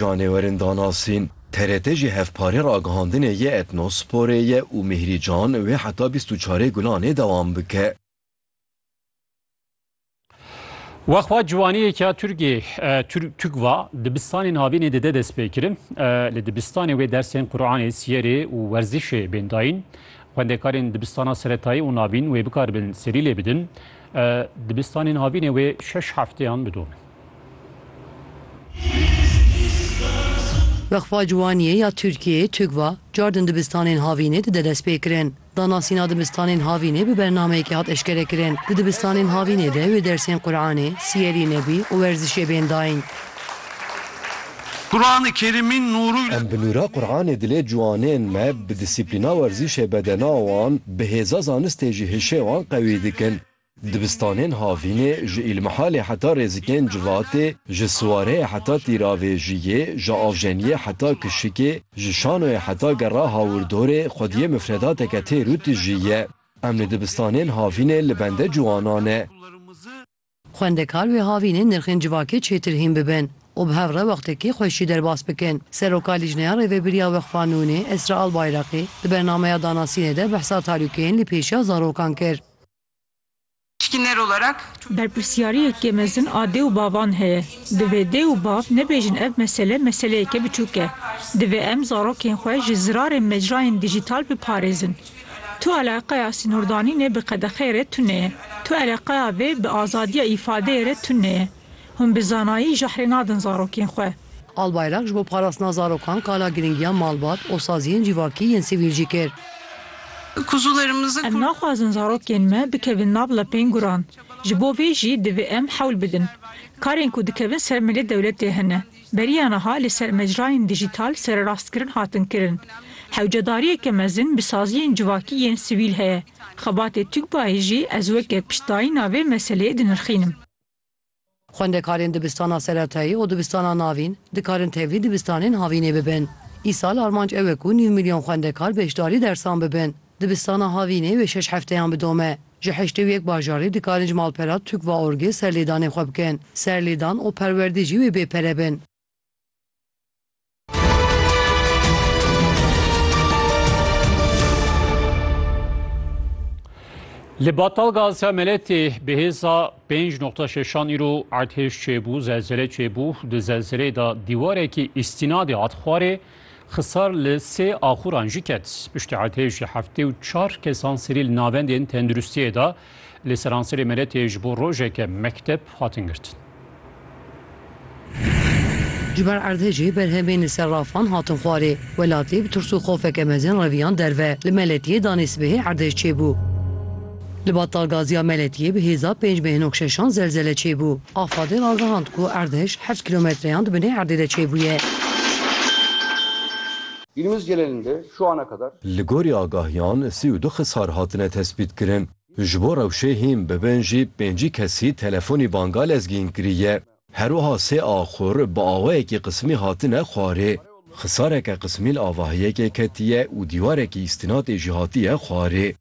Canêwerin danasîn, TRT jî hevparê ragihandinê yê Etnosporê ye û Mihri Can wê heta bîst û çarê Gulanê dewam bike. Wexwa ciwaniyêk ya Turkê Tukva dibistanên havînê dide destpêkirin. Li dibistanê wê dersên Quranê, siyerê û werzîşê bên dayîn. Xwendekarên dibistana seretayî û navîn wê bikaribin serî lê bidin. Dibistanên havînê wê şeş hefteyan bidomin. Wexfa Ciwaniyê ya Tirkiyeyê, TUGVA, car din dibistanên havînê dide destpêkirin. Danasîna dibistanên havînê bi bernameyekê hat eşkerekirin. Di dibistanên havînê de wê dersên Quranê, Siyerî Nebî û werzişê bên dayîn. Em bi nûra Quranê dilê ciwanên me bi dîsîplîna werzîşê bedena wan, bi hêza zanistê jî hişê wan qewî dikin. Dibistanên havînê ji Îlmihalê heta Rêzikên Civatê, ji Siwareyê heta Tîravêjiyê, ji Avjeniyê heta Kişikê, ji Şanoyê heta Gera Hawirdorê xwediyê mifredateke têr û tijî ye. Em li dibistanên havînê li bende ciwanan ne. Xwendekar wê havînê nirxên civakê çêtir hîn bibin û bi hev re wextekî xwe jî derbas bikin. Seroka Lîjneya Rêvebiriya Weqfa Nûnê Esra Albayraqî di bernameya danasînê de behsa tarûkeyên li pêşiya zarokan kir. Berpirsyariyekê mezin a dê û bavan heye. Divê dê û bav nebêjin ev mesele meseleyeke biçûk e. Divê em zarokên xwe ji zirarên mecrayên dîjîtal biparêzin. Tu eleqeya sînordanînê bi qedexeyê re tune ye. Tu eleqeya vê bi azadiya îfadeyê re tune ye. Hûn bi zanayî jahrê nadin zarokên xwe. Albayrak ji bo parastina zarokan kala girîngiya malbat û saziyên civakî yên sivîl jî kir. Em naxwazin zarokên me bikevin nav lepên guran. Ji bo vê jî divê em hewl bidin. Karên ku dikevin ser milê dewletê hene. Beriya niha li ser mecrayên dijîtal sererastkirin hatin kirin. Hewcedariyeke mezin bi saziyên civakî yên sivîl heye. Xebatê TUGBA'yê jî ez weke piştdayîna vê meseleyê dinirxînim. Xwendekarên dibistana seretayî û dibistana navîn dikarin tevlî dibistanên havînê bibin. Îsal armanc ew e ku nîv milyon xwendekar beşdarî dersan bibin. Dibistana havînê wê şeş hefteyan bidome. Ji heştê û yek bajarî dikarin ji malpera Tukva-Orgê serlêdanê xwe bikin. Serlêdan û perwerdî jî wê bê pere bin. Li Batal Gaziya Meletê bi hêza 5.6 îro erdhêj çêbû, zelzele çêbû. Di zelzeleyê de dîwarekî îstînadê hat xwarê, xisar li sê axuran jî ket. Piştî erdhêjê heftê û çar kesan serî li navendên tenduristiyê de Li seranserê meletê ji bo rojeke mekteb hatin girtin. Ji ber erdhejê berhemên li ser rafan hatin xwarê. Welatî bi tirs û xofeke mezin reviyan derve. Li Meletiyê danê sibehê erdhej çêbû. Li Battalgaziya Meletiyê bi hêza pênc bê hinok şeşan zelzele çêbû. Afadê ragihand ku erdhej heft kîlometreyan di binê erdê de çêbûye. Dilimiz Celelinde şu ana kadar. Li gorî agahiyan sî û du xisar hatine tespîtkirin. Ji bo rewşê hîn bibin jî pêncî kesî telefonî banga lezgîn kiriye. Her wiha sê axur bi awayekî qismî hatine xwarê. Xisareke qismî li avahiyekê ketiye û dîwarekî îstînatê jî hatiye xwarê.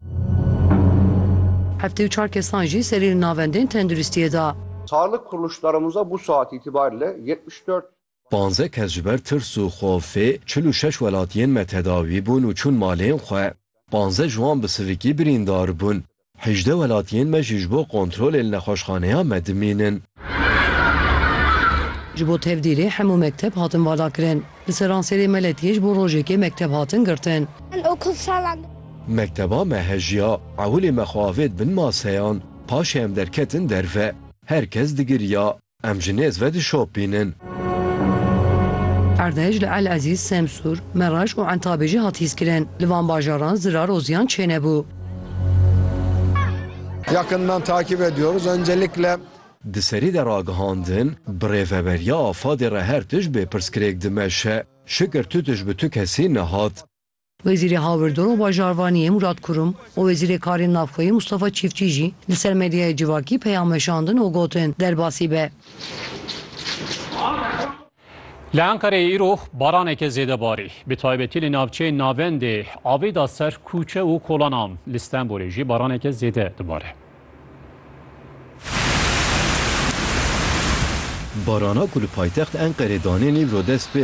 Heftê û çar kesan jî serî li navendên tenduristiyê da. Sağlık kuruluşlarımıza bu saat itibariyle yetmiş dört. Panzdeh kes ji ber tirs û xofê çil û şeş welatiyên me tedawî bûn û çûn malên xwe. Panzdeh ji wan bi sivikî birîndar bûn. Hejdeh welatiyên me jî ji bo kontrolê li nexweşxaneya me dimînin. Ji bo tevdîrê hemû mekteb hatin valakirin. Li Seranserê me letiyê ji bo rojekê mekteb hatin girtin. Mekteba me hejiya. Ewilê me xwe avêt bin maseyan. Paşê em derketin derve. Her kes digiriya. Em ji nêz ve dişopînin. Erdhej li El Ezîz, Semsûr, Meraj û Entabê jî hat hîskirin. Li van bajaran zirar û ziyan çênebû. Yakından takip ediyoruz. Öncelikle. Di serî de ragihandin, bi rêveberiya AFAD'ê re her tişt bê pirsgirêk dimeşe. Şikir tu tişt bi tu kesî nehat. Wezîrê Hawirdor û Bajarvaniyê Mûrat Kurum û Wezîrê Karên Navxweyî Mûstafa Çîftçî jî li ser medyaya civakî peyam weşandin û gotin, Derbasî be. Li Enqereyê îro baraneke zêde barî. Bi taybetî li navçeyên navendê avê da ser kûçe û kolanan. Li Stenbolê jî baraneke zêde dibare. Barana ku li paytext Enqerê danên îro dest pê